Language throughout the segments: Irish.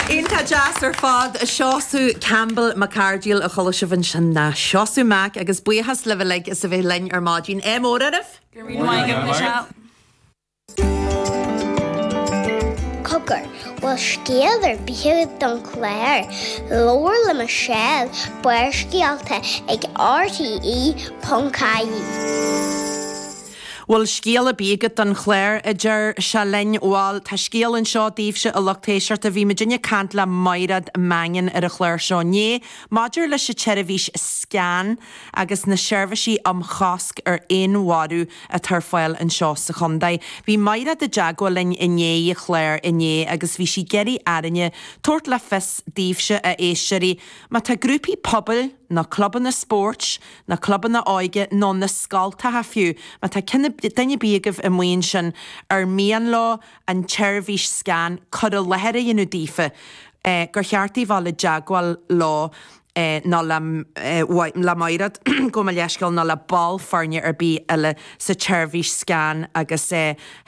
Iontach deas ar fad, a Sheosaimh. Campbell, Mac Ardghail a chuala sibh ansin ná Seosamh Mac agus buíochas libh uilig as a bheith linn ar maidin. Ádh mór oraibh! Go raibh maith agat, Michelle. Cogar, bhfuil scéal ar bith agat don chlár? Labhair le Michelle Barrscéalta ag RTÉ ponc ie. Bhfuil scéal ar bith agat don chlár? a deir sí linn. Bhal, tá scéal anseo daoibhse, a lucht éisteachta. Bhí muidinne ag caint le Maighreád Mangan ar an chlár seo inné maidir leis an tseirbhís scan agus na seirbhísí um chosc ar fhéinmharú atá ar fáil anseo sa chontae. Bhí Maighreád i dteagmháil linn i ndiaidh an chláir inné agus bhí sí ag iarraidh orainne tabhairt le fios daoibhse, a éisteoirí, má tá grúpaí pobail, na clubanna spóirt, na clubanna óige nó na scoltacha fiú, má tá duine ar bith agaibh amuigh ansin ar mian leo an tseirbhís scan cur i láthair a dhéanamh daofa, gur cheart daoibh dul i dteagmháil leo nó le Máire, gabh mo leithscéal, nó le ball foirne ar bith eile sa tseirbhís scan agus.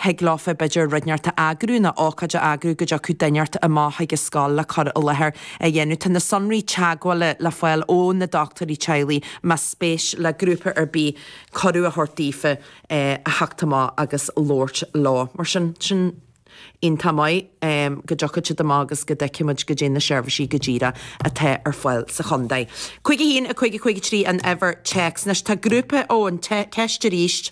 thig leofa b'fhéidir rud inteacht a eagrú nó ócáid a eagrú go dtiocfadh duine inteacht amach chuig an scoil le cur i láthair a dhéanamh. Tá na sonraí teagmhála le fáil ó na dochtúirí teaghlaigh más spéis le grúpa ar bith cuireadh a thabhairt daofa a theacht amach agus labhairt leo. Mar sin, sin iontach maith go dtiocfaidh siad amach agus go dtchífimid goidé na seirbhísí go díreach atá ar fáil sa chontae. 51, 50, 53 an uimhir téacs. Anois tá grúpa ó an, téacs arís.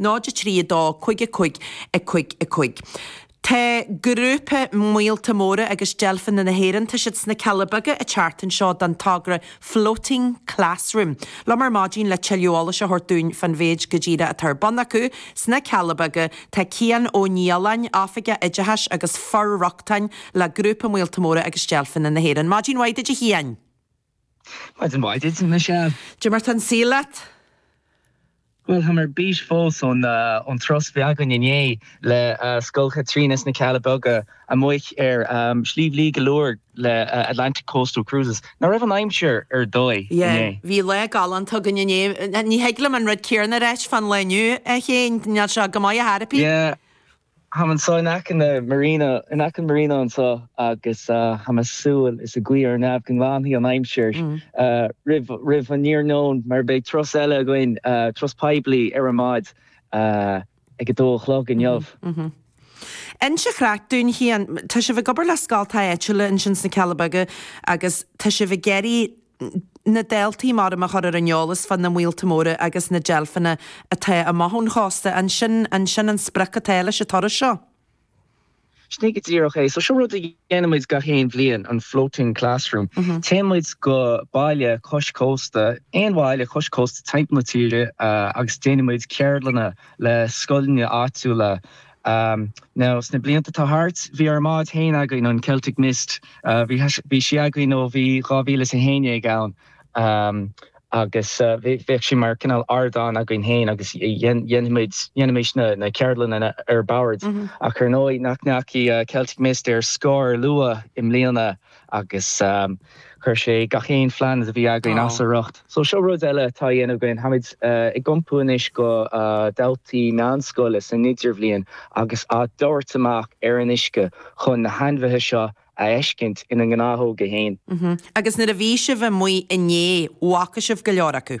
0 3 2 5 5 5 5 Tá grúpa míolta móra agus deilfeanna na hÉireann, tá siad sna Cealla Beaga, an tseachtain seo don togra Floating Classroom. liom ar maidin le tuilleadh eolais a thabhairt dúinn fán mhéid go díreach atá ar bun acu sna Cealla Beaga. Tá Cian Ó Nialláin, Oifigeach Oideachais agus For-rochtana le Grúpa Míolta Móra agus Deilfeanna na hÉireann. Maidin mhaith duit a Chiain! Maidin mhaith duit, a Michelle. Goidé mar atá an saol leat. Bhuel, táim ar bís fós ón turas a bhí againn inné le Scoil Chaitríona sna Cealla Beaga amuigh ar Shliabh Liag le Atlantic Coastal Cruises. Ná raibh an aimsir ar dóigh inné? Bhí lá galánta againn inné. Ní thig liom an rud céanna a ráit fán lá inniu, a Chiain, níl sé go maith ar chor ar bith. Táim anseo in aice na Marina, in aice an Marina anseo agus táim ag súil is ag guí ar an neamh go nglanfaidh an aimsir roimh an iarnóin mar beidh turas eile againn, turas poiblí ar an mbád ag a dó a chlog inniu. Inis ar scor ar bith dúinn, a Chiain, tá sibh ag obair le scoltacha áitiúla ansin sna Cealla Beaga agus tá sibh ag iarraidh na daltaí maram a chur ar an eolas fá na míolta móra agus na deilfeanna atá amach ón chósta. An sin, an é sin an sprioc atá leis an turas seo? Sin go díreach é. So seo rud a dhéanaimid gach aon bhliain, an Floating Classroom. Téann muid go baile cois cósta, aon bhaile cois cósta timpeall na tíre agus déanaimid ceardlanna le scoileanna áitiúla, Now, sna blianta atá thart, bhí ár mbád fhéin againn, an Celtic Mist, bhí sí againn ó bhí 2011 ann agus bheadh sí mar cineál ardán againn fhéin agus dhéanfaimid, dhéanfaimis na ceardlanna ar bord ach ar ndóigh nach ndeachaigh Celtic Mist ar scor luath i mbliana. Agus chuir sé gach aon phlean a bhí againn as a riocht. So seo rud eile atá a dhéanamh againn, táimid ag iompú anois go daltaí meánscoile san idirbhliain agus á dtabhairt amach ar an uisce chun na hainmhithe seo a fheiscint ina ngnáthóga féin. Agus nuair a bhí sibh amuigh inné, bhfaca sibh go leor acu?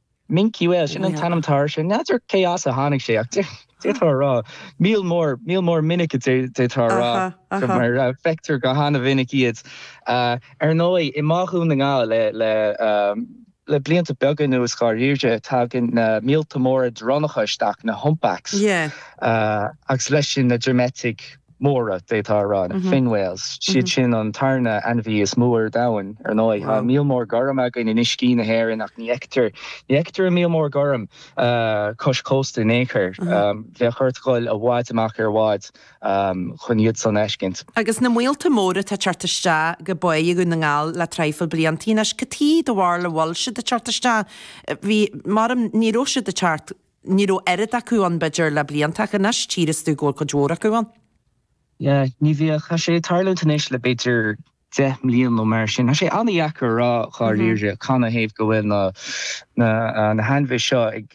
Minke whale, sin an t-ainm atá air sin. N'fheadar cé as a tháinig sé ach d'fhéadfá a rá míol mór, míol mór minic d'fhéadfá a rá go mar feictear go han-mhinic iad. Ar ndóigh, i mBá Dhún na nGall le blianta beaga anuas dháiríre, tagann na míolta móra dronnacha isteach, na humpbacks, agus leis sin na droimeitigh. móra, d'fhéadfá a rá, fin whales, siad sin an tarna ainmhí is mó ar domhain, ar ndóigh. Tá an míol mór gorm againn in uiscí na hÉireann ach ní fheictear, ní fheictear an míol mór gorm cois cósta in aon chor. Bheadh ort dul i bhfad amach ar bhád chun iad san a fheiscint. Agus na míolta móra atá ag teacht isteach go Báigh Dhún na nGall le traidhfil blianta anois, caidé dá bharr a bhfuil siad ag teacht isteach? Bhí, maram, ní raibh siad ag teacht Ní raibh oiread acu ann, b'fhéidir, le blianta, ach anois tí's tú go bhfuil cuid mhór acu ann. Yeah, ní bheadh. Tá sé ag tarlúint anois le b'fhéidir deich mbliain nó mar sin. Tá sé an-deacair a rá dháiríre canathaobh go bhfuil na hainmhithe seo ag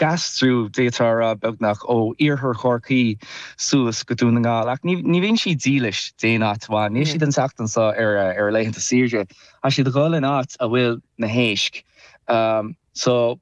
aistriú, d'fhéadfá a rá, beagnach, ó iarthar Chorcaí suas go Dún na nGall. Ach ní bhíonn siad dílis d'aon áit amháin. Níl siad an tseachtain seo ar a laethanta saoire. Thá siad a dhul in áit a bhfuil na héisc. So.